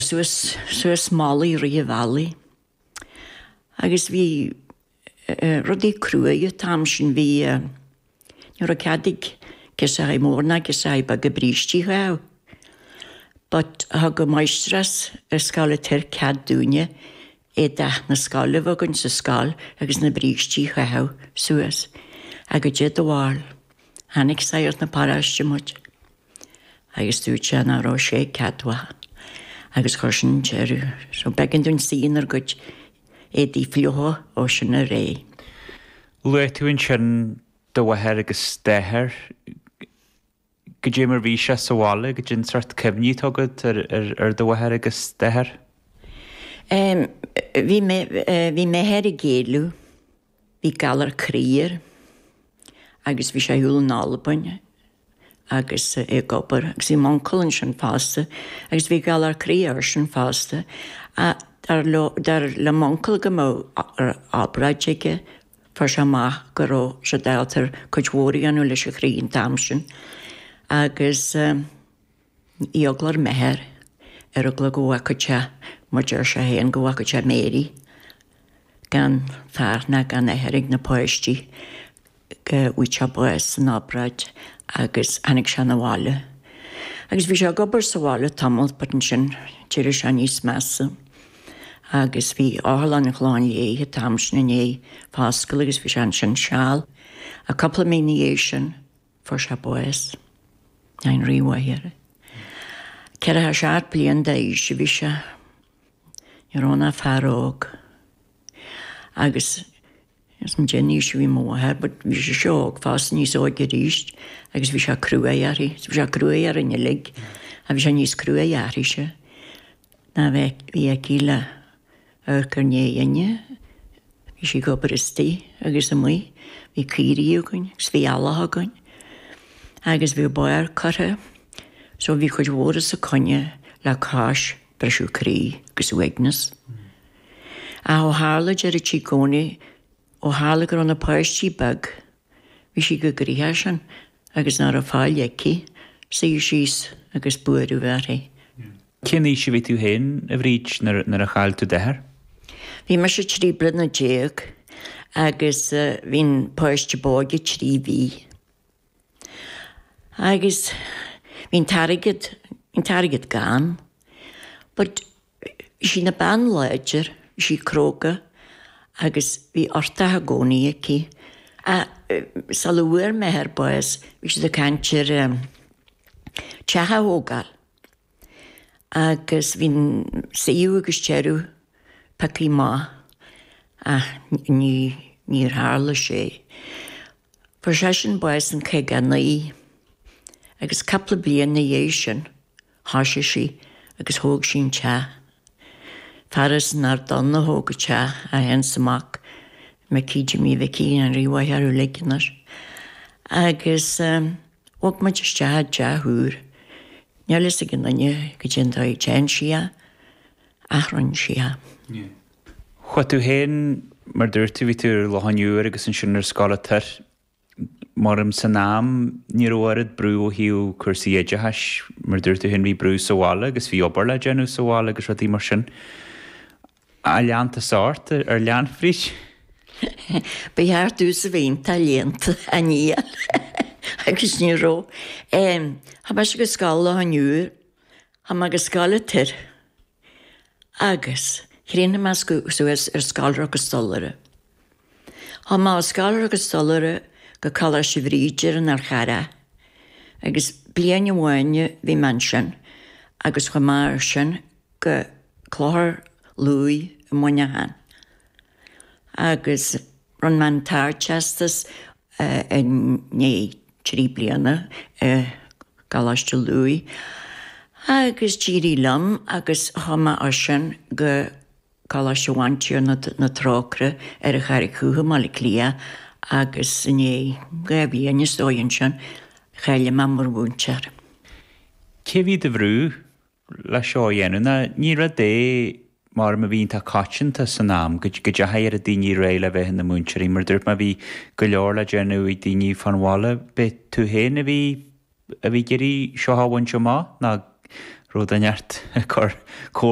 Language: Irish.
suas suas malaí i rith an bhealaigh agus bhí rudaí cruaidh an t-am sin bhí ní raibh cead ag girseachaí móra ná girseachaí beaga brístí a chaitheamh but thug an máistreás scoile ag tabhairt cead dúinne éadach na scoile a bheith againn sa scoil agus na brístí a chaitheamh suas agus goidé do bharúil chonaic sagart na paróiste muid. agus dúirt sé nach raibh sé ceadmhach agus chuir sin deireadh so b'éigean dúinn suí inár gcuid éadaí fliucha ó sin i leith. Luaigh tú ansin do mháthair agus d'athair. Goidé mar bhí sé sa bhaile, goidé an sórt cuimhní atá agat ar do mháthair agus d'athair? Bhí m'athair ag éileamh. Bhí galar croí air agus bhí sé thall in Albain agus é ag obair agus bhí m'uncail ansin fosta agus bhí galar croí airsean fosta. Dar leo, dar le m'uncail go mbeadh obráid aige, fuair sé amach go raibh siad ábalta cuid mhór a dhéanamh leis an chroí an t-am sin agus, Eagla ar m'athair ar eagla go bhfágfadh sé mar a dúirt sé fhéin go bhfágfadh sé Mary gan fear ná gan athair ag na páistí go bhfaigheadh sé bás san obráid agus tháinig sé na bhaile agus bhí sé ag obair sa bhaile tamalt but ansin d'éirigh sé níos measa agus bhí Otharlann an Chlocháin Léith an t-am sin i ndiaidh foscailt agus bhí sé ansin seal agus cúpla mí ina dhiaidh sin. fuair sé bás, ní raibh m'athair ach 47 bliain d'aois a bhí sé, ní raibh ann ach fear óg agus níl fhios agam goidé an aois a bhí mo mháthair, but bhí sise óg fosta, níos óige arís agus bhí sé cruaidh uirthi, bhí sé cruaidh orainn uilig ach bhí sé níos cruaidhe uirthise. nó bhí aici le hamharc inár ndiaidhinne. Bhí sí ag obair istoigh agus amuigh. Bhí caoirigh againn agus bhí eallach againn agus bhí barr curtha so bhí cuid mhór os a coinne le cois briseadh croí agus uaigneas. Ach ó tharla deireadh sí i gcónaí ó tharla go raibh na páistí beag, Bhí sí chomh gnoitheach sin agus nach raibh faill aici suí síos agus buaireamh uirthi. Cén aois a bhí tú féin, a Bhríd, nuair a chaill tú d'athair? Bhí mise trí bliana déag agus bhí an páiste b'óige trí mhí. Agus bhí an t-airgead, bhí an t-airgead gann. But Bhí sí ina bean láidir, bhí sí cróga agus bhí uchtach i gcónaí aici. Sul a bhfuair m'athair bás bhí siad ag caint ar teach a thógáil agus bhí an suíomh agus deireadh pioctha amach ach ní níor tharla sé. Fuair seisean bás in caoga a naoi agus cupla bliain ina dhiaidh sin Thoisigh sí agus thóg sí an teach. Fear as an Ard Donn a thóg an teach, é fhéin is a mhac, Micí Jimí Mhicí an Rí a mhaith orthu uilig anois. Agus bhog muid isteach i dteach úr. Níl a fhios ag aon duine caidé an dóigh a dtearn sí é, ach rinne sí é. Chuaigh tú fhéin, mar dúirt tú, bhí tú ar Loch an Iúir agus ansin ar Scoil an Toir. Mar san am, ní raibh oiread brú ó thaobh cúrsaí oideachais, mar a dúirt tú fhéin, bhí brú sa bhaile agus bhí obair le déanamh sa bhaile agus rudaí mar sin. Ar lean tusa ort, ar lean fríd? Ba cheart dtús a bhaint ar lean tú, a ndíol, agus ní raibh. Chuaigh mise go scoil Loch an Iúir, chuaigh mé go Scoil an Toir. Agus chríochnaigh mé suas ar scoláireacht stollaire. Chuaigh mé ar scoláireacht stollaire go Coláiste Bhríde ar an Fhál Carrach. Agus bliain amháin a bhí mé ansin agus chuaigh mé as sin go Clochar Lughaidh i Muineachán. Agus. Rinne mé an tArdteastas i ndiaidh trí bliana i gColáiste Lughaidh agus d'éirigh liom agus chuaigh mé as sin go Coláiste Bhantiarna na Trócaire ar an Charraig Dhubh i mBaile Átha Cliath agus i ndiaidh dhá bhliain is dóigh ansin, cháiligh mé mar mhúinteoir. Cé bhí do bhrú leis seo a dhéanamh nó ní rud é mar a bhí iontach coitianta san am go go deachaigh oiread daoine ar aghaidh le bheith ina múinteoirí mar dúirt mé bhí go leor le déanamh ag daoine fán bhaile b'é tú féin a bhí a bhí ag iarraidh seo a bhaint amach nó an raibh duine thart ag cur comhair